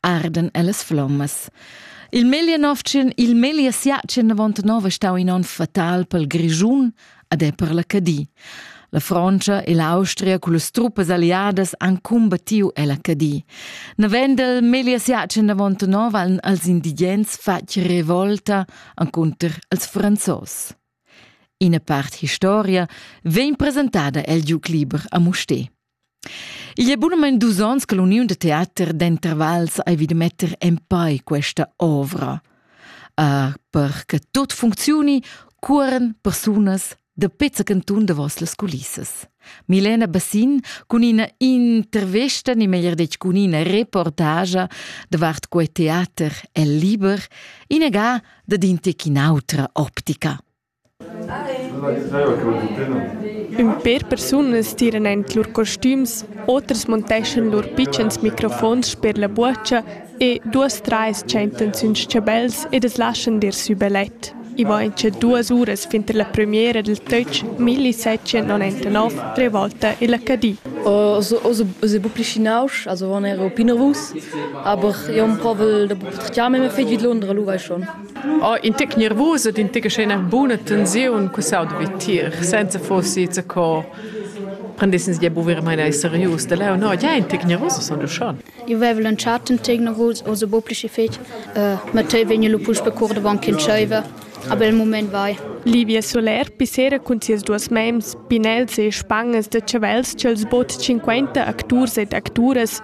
arden ellas flommas. Il meglier novtschen, il meglier siatschen avant nov è stau in onn fatal pel Grischun ad è per la Cadi. La Francia e l'Austria con las truppes alliadas han combattiu ella Cadi. Navendel meglier siatschen avant nov han als indigens fatg revolta anconter als franzos. Ina part historia vegn presentada el giuc liber a Musté. Igl è bunamain dus onns che l'uniun da teater d'intervals ei vid metter empau questa ovra, uh, per che tot funcziuni cuoran persunas da pezza cantun davos las culissas. Milena Bassin cun ina intervesta, ni meglier detg cun ina reportagia davart quei teater el liber, inaga dad in tec in autra optica. Ün per persunas tiran aint lur costüms, oters monteschan lur pitschens microfons sper la buocha e duos trais tschentan sün s-chabels ed as laschan dir sü belet. I vain cha duos uras finter la prümiera dal töch milli settschentonantanov revolta illa Cadi. Os è bu pli schinausch, also wenn er un pin nervus, aber io am provel da bu per chiamar, ma fetg vid Londra, lu vai schon. Oh, in tic nervusa ed in tic scena buna tensiun che sau devi tir, senza fossi za co prendessens ja buvir mai nei serius da leo no ja in tic nervusa son du schon io vevo lanciato un tic nervus o so bopplici fetg ma te vegno lo pus pe cor davant che ceiva a bel moment vai Livia Soler pisera cun sias duas mems, pinels e spangas da chavels ch'els bod 50 acturs ed acturas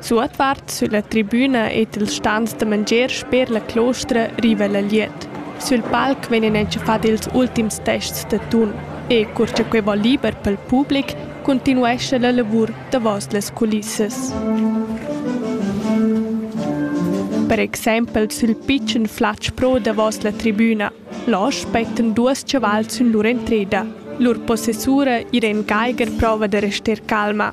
Suotvart sülla tribüna ed i'ls stans da mangier sper la clostra riva la glieud. Sül palc vegnan entschafats ils ultims tests da tun e, cur cha quai vo liber pel public, cuntinuescha la lavur davos las culissas. Per exaimpel sül pitschen flatsch pro davos la tribüna. Là spettan duos chavals sün lur entreda. Lur possessura Irene Geiger prova da rester calma.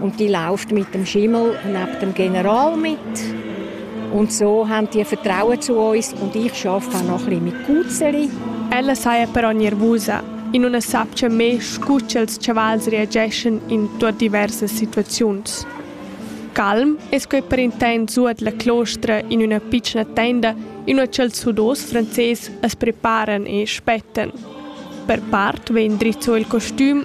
Und die läuft mit dem Schimmel neben dem General mit. Und so haben die Vertrauen zu uns und ich arbeite auch noch ein mit Cuzeri. Ella saja però nervusa e non sapcia me scu ch'els chavals reageschan in tuot diversas situaziuns. Calm es quei per intent suot la clostra in üna pitschna tenda in ua ch'els sudos frances as preparan e spettan. Per part vegn drizzo il costüm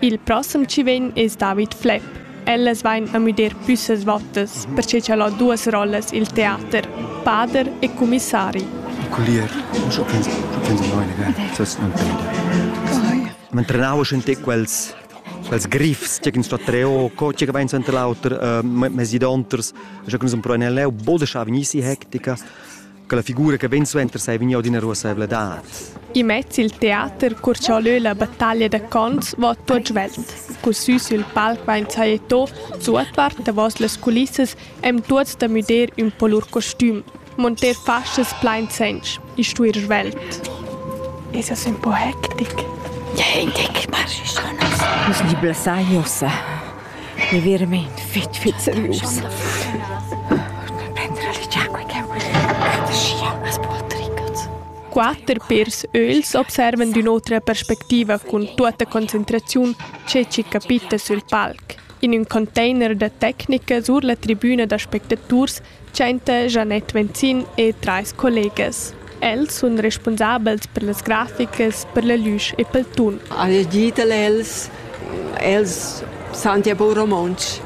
Il prossem chi vegn es David Flepp. Ellas vain a müder püssas vottas, perche cha'l ho duos rollas i'l teater, pader e cumissari. Collier, eu penso, eu penso noi, ne, das non peda. Man trenava schon te quels quels griffs che sto treo co che vain sent l'auter mesi donters je kun zum proenel leu boda scha vegnissi hectica quella figura che ben suenter sei vegniu d'ina ruasseivladad. Immez il teater cur ch'ha leu la battaglia da cons va tot svelt. Cu sü sul palc vain sajeto suotvart davos las culissas em tuots da müder ün po lur costüm, monter fascias plain sench e stuir svelt. Es es un po hectic. Ja, hectic, marschis Nus ni blessai ossa. Mi veramein fetg, fetg serius. Prender a ligiar quei ch'jeu vul. Schia, as poltricas. Quatter pèrs ögls observan d'ün'otra perspectiva cun tuotta concentraziun che chi capita sül palc. In ün container da tecnica sur la tribüna d'aspectaturs Tschenta Janette Venzin e trais collegas. Els sun respunsabels per las graficas, per la lüsch e pel tun. Al gitel els els santia po romontsch.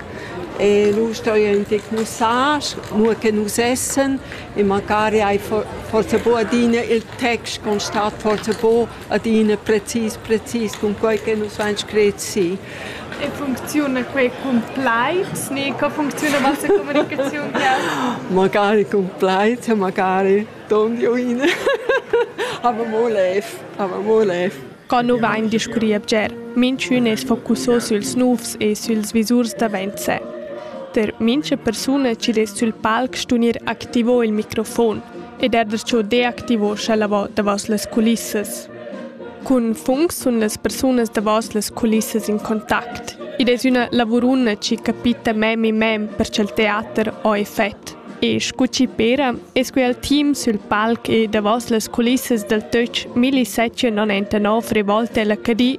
E lu stoi enti mussage, mo che nus essen e magari hai forse bo adina il text constat forse bo adina precis precis cun quei che nus vein scret si. E funcziuna quei cun plaid ni co funcziuna massa communicaziun jeu? Magari cun plaid, magari ton di uin. Aber mo lev, aber mo lev. Co nu vain discurri bger. Minchün es focusso süls nouvs e süls visurs davent sè. Per mincha persuna chi dess sül palc stunir activo il microfon ed er da cho deactivo scha la vo davos las culissas. Cun funs sun las persunas davos las culissas in contact. Id es üna lavuruna chi capita mem in mem per cha'l teater ho effet. E scu chi pera es que al team sül palc e davos las culissas dal töch 1079 rivolta a l'Acadie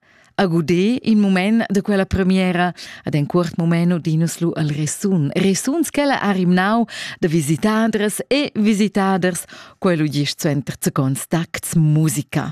A guder in mument da quella premiera ad en cuort moment odinus lu al resun. Resuns ch'ella ha rimnau da visitaders e visitaders, quel udisch suenter zacons tacts musica.